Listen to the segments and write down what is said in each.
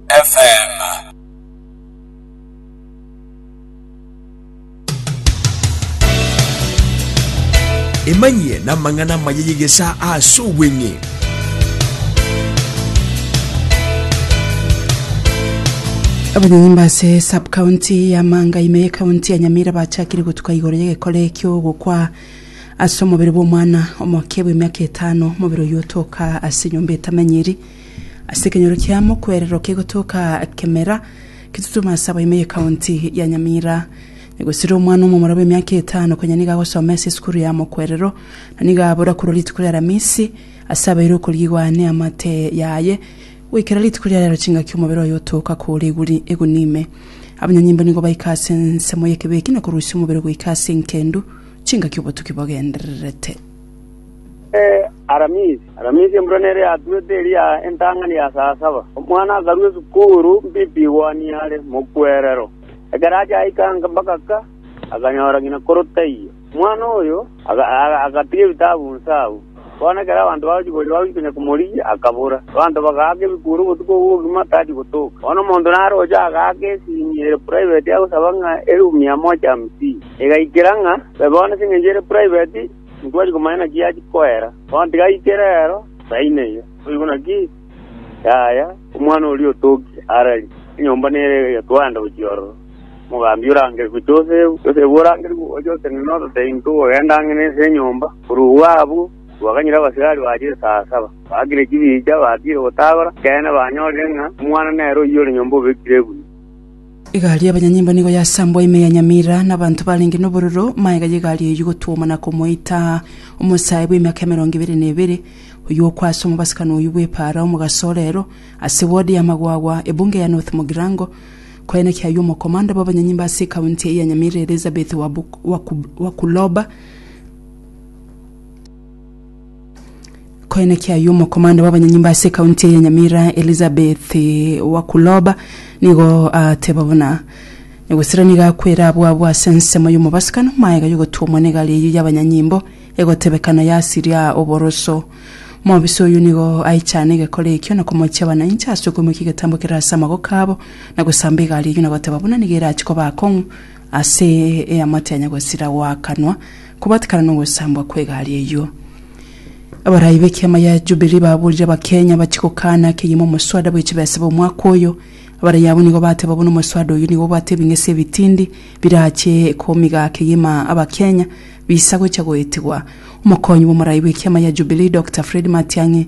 FM. Emanyie n'amang'ana amaya y'egesaa ase obweng'e. abanyanyimba ase subcounty ya manga ime ye county ya nyamira bachakire gotuka igoro y'egekore ekio gokwa ase omobere bw'omwana omoke bw'emiaka etano omobere oyio otoka ase nyomba etamenyiri Ase ekenyoro kiamo kwerero kegotoka kemera kitutuma ase abaime ye county ya Nyamira. Negosira omwana omomura bw'emiaka etano konya nigo agosoma ase esukuru yamo kwerero na nigo abora korwa rituko ria Aramisi ase abeire okorigwa ne amate yaye goikera rituko ria rero chingaki omobere oye otoka kore eguri eguni ime. Abanyanyimbo nigo baika ase ensemo y'ekebe eki na korusia omobere goika ase enkendu chingaki obotuki bogendererete. Eh, Aramisi. Aramisi embura nere yatuete eria entang'ani ya saa saba. Omwana akarwa esukuru, mbipi igwani are, mokwerero. Ekero achaika nka- mpaka ka, akanyora ng'ina koro taiyo. Omwana oyo aga- aga- agatiga ebitabu nse agwo. Bono ekero abanto bagochi koria bagochi konya komorigia, akabora. Abanto bagaaka ebikuro obotuko obwo bogima tachi gotoka. Bono omonto nare ocha agaaka esimi ere private agosaba ng'a erumu ya mocha hamsini. Igaikera ng'a babe bono ase engencho ere private, intwari komanya naki yachia koera. Bono tigaike rero, saini eyio. Boigo naki, yaya, omwana oria otoki arari, enyomba nere egetwanda gochia ororo. Omogambi orangeri gochia Josefu, Josefu orangeri gochia gose ng'a noto teinto ogogenda ang'e nense y'enyomba. Korwa obwo abwo, twaganyire abasigari bachia esaa saba. Baakire chibicha, batiire gotagora, ekeene banyorire ng'a omwana nere oyio ore nyomba obekire egunia. Egari y'abanyanyimbo nigo yasambwa ime ya Nyamira, na abanto barenge nobororo, maega y'egari eyio gotwoma na komoita omosae bw'emiaka emerongo ebere na ebere, oyio okwa ase omobasakano oyio bw'epaara omogaso orero, ase ward ya Magwagwa, ebunge ya North Mugirango. Koyene kiayio omokomanda bw'abanyanyimbo ase ekaunti eye ya Nyamira Elizabeth Wabu- Waku- Wakuloba, Koina kiaye omokomanda bw'abanyanyimba ase ekaunti ya Nyamira Elizabeth Wakuloba nigo ateba buna egosira nigo akwera abwo abwo ase ensemo y'omobasikano maega y'ogotuomwa negari eyio y'abanyanyimbo egotebekana yasiria oboroso. Mobisa oyio nigo aichane egekora ekio na komochia abananchi ase okoimokia egetambo kerase amagoka abo na gosamba egari eyio na goteba buna nigo erachi koba akong'u Ase eamate ya nyagwesira goakanwa kobatikana nogosambwa kw'egari eyio. Abarai b'ekiama gia Jubilee baborire Abakenya bachie gokana akeyemo omoswada bw'echibesa bw'omwaka oyo. Abarai abwo nigo bateba buna omoswada oyio nigo obwate ebing'ese ebitindi birachie komiga akeyema Abakenya bisa gocha goetigwa. Omokonyi bw'omorai bw'ekiama gia Jubilee Doctor Fred Matiang'i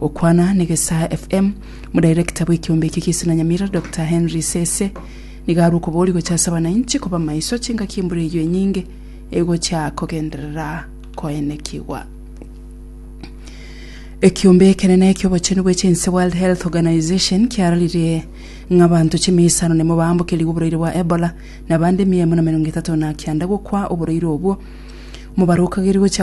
Gokwana negesaa FM, Modirector bw'ekiombe ekio ki'Isuna Nyamira, Doctor Henry Sese, nigo arwe okoboria gocha ase abanainchi koba maiso chingaki embura eyio enyinge egocha kogenderera koenekigwa. Ekiombe ekenene eki'obochenu bwe chinse World Health Organization kiararirie ng'a abanto chimia isano nemo baambokerigwe oboraire bwa Ebola na abande mia emo na merongo etato na kianda gokwa oboraire obwo. Mobaro okageria gocha